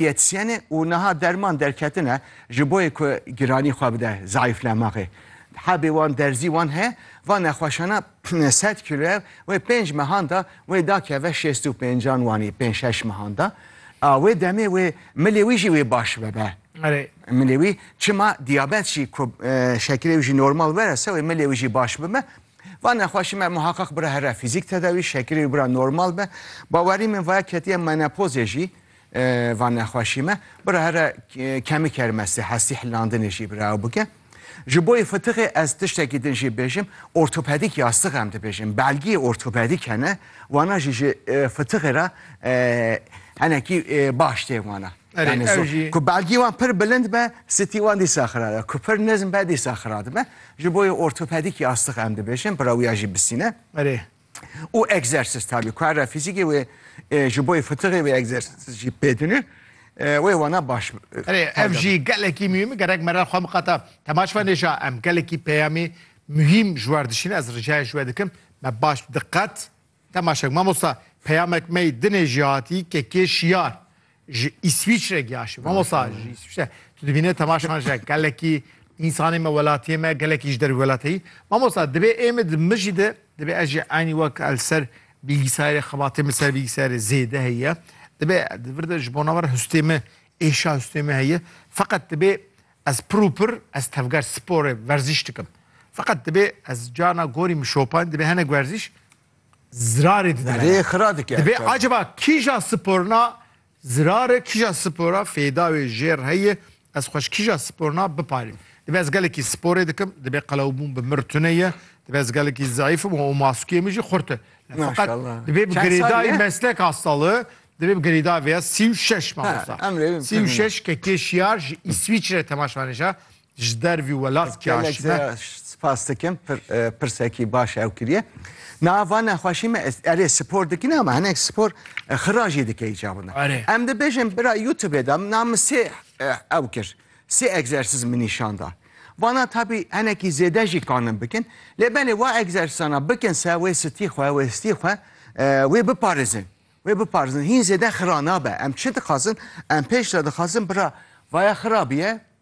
yetîsyene û niha derman derketine ji bo yê ku giranî xwe bide zayîflemaxê. Hebê wan derzî wan heye, va nexweşana sed kîloye wê pênc mehan da wê da keve şêst û pêncan wanî pênc şeş mehan da. A wê demê wê milê wî jî wê baş bibe. Erê. Milê wî çima diyabet jî ku şekilê wî jî normal were se wê milê wî jî baş bibe. Va nexweşî me muheqeq bira here fîzîk tedawî, şekilê wî bira normal be. Bawerî min vaya ketiye menopozê jî. Van nexweşî me bira here kemik her mestê hestî hilandinê jî bira ew bike. Ji boyê fitiqê ez tiştekî din jî bêjim ortopedîk yastiq em dibêjin belgiyê ortopedîk hene wana jî ji fitiqê re henekî baş tê wana. Ku belgî wan pir bilind be sitî wan dîsa xira be ku pir nizm be dîsa xira dibe ji boyê ortopedîk yastiq em dibêjin bira wî ya jî bisîne. û egzersîz tabî ku her re fîzîkî wê ji bo fitiqê wê egzersîz jî pê dine wê wana baş Erê ev jî gelekî muhîm gerek me re xwe miqate temaş be nêja em gelekî peyamê muhîm ji wer dişîne ez ricayê ji we dikim me baş diqet temaşek mamosta peyamek mey dinê jî hatî ke kê şiyar Ji Îswîçre giyaşî. Mamosta ji Îswîçre tu dibîne temaşan ji gelekî însanê me welatiyê me gelekî ji dervî welateyî. Mamosta dibê ê min di min jî de dibê ez jî eynî wek el ser bilgisayarê xebatê min ser bilgisayarê zêde heye. Dibê di vir de ji bona me re hustê min êşa hustê min heye. Feqet dibê ez pir û pir ez tevger sporê werzîş dikim. Feqet dibê ez carna gorî min şopan dibê hinek werzîş zirarê dide me. Dibê acaba kîja sporna zirare kîja spora fêda wê jêr heye ez xweş kîja sporna biparîm. Dibê ez gelekî sporê dikim dibê qelewbûn bi mir tune ye dibê ez gelekî zeîfim û û maskûyê min jî xurt e. Feqet dibê bi girêdayî meslek a sali dibê bi girêdayî vêya sî û şeş mamosta. Sî û şeş ke kê şiyar ji Îswîçre temaşvanêşa Ji dervî welat kî aşîna. Spas dikim pir pirsekî baş ew kiriye. Na va nexweşî me erê spor dikîn ama hinek spor xira jî dike îca wina. Em dibêjin bira YouTubeê de na min sê ew kir. Sê egzersîz min nîşan da. Vana tabî hinekî zêde jî kanin bikin. Lê belê wa egzersîzana bikin se wê stî xwe wê stî xwe wê biparêzin. Wê biparêzin hîn zêde xira nabe. Em çi dixwazin? Em pêş de dixwazin bira vaya xira bîye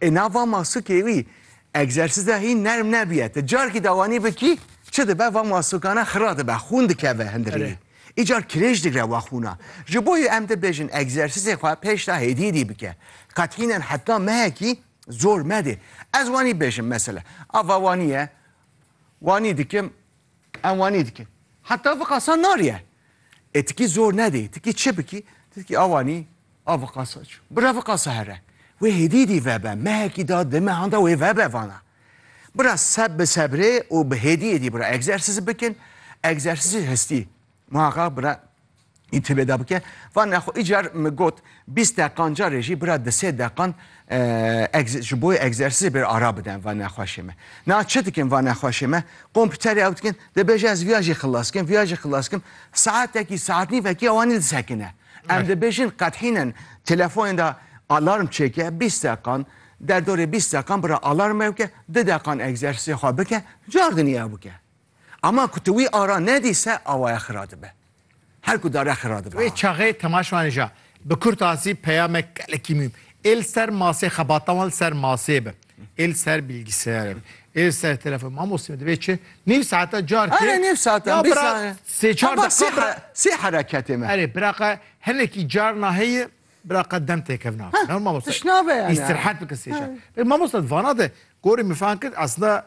Ê nava masukê wî egzersîza hîn nerm nebîye. Ti carkî dawanî bikî çi dibe va masukane xira dibe, xûn dikeve hindirînî. Îcar kirêj digre va xûna. Ji bo yê em dibêjin egzersîzê xwe pêşda hêdî hêdî bike. Qet hînen heta mehekî zor medê. Ez wanî bêjim mesela. A va wanî ye, wanî dikim, em wanî dikin. Heta viqasan nariye. E tikî zor nedê, tikî çi bikî? Ti dikî awanî a viqasa çû. Bira viqasa here. Wê hêdîdî vebe, mehekî da di mehan da wê vebe vana. Bira seb bi sebrê û bi hêdiyê dî bira egzersîz bikin, egzersîzê hestî. Muhaqaq bira întîbê da bike. Van nexwe îcar min got Bîst deqan carê jî bira di sê deqan ji bo egzersîzê bêra ara bidin va nexweşê me. Niha çi dikin va nexweşê me? Kompîterê ew dikin, dibêje ez viya jî xilas kim, viya jî xilas kim, saetekî, saetnîvekî ew anî disekine. Em dibêjin qet hînin telefonên de alarm çêke, bîst deqan, derdorê bîst deqan bira alarm ew ke, di deqan egzersîzê xwe bike, cardinî ew bike. Ama ku tu wî ara nedî se awaya xira dibe. Her ku dare xira dibe. Wê çaxê Temaş Maneja bi kurtasî peyamek gelekî mûhîm ê li ser masê xebata wan li ser masê be, ê li ser bîlgîseyarê be, ê li ser telefon Mamostê min divê çi nîv saeta carkê Erê nîv saeta ya bîst bira saniye sê çar heta sê deqiqa bira here sê hereketê me. Erê biraqa hinekî carna heye biraqa dem têkevin nakin. He, Mamoste tişt nabe yani. îstîrehet bikin sê çar. Peki mamoste di vana de gorî min fehm kir aslında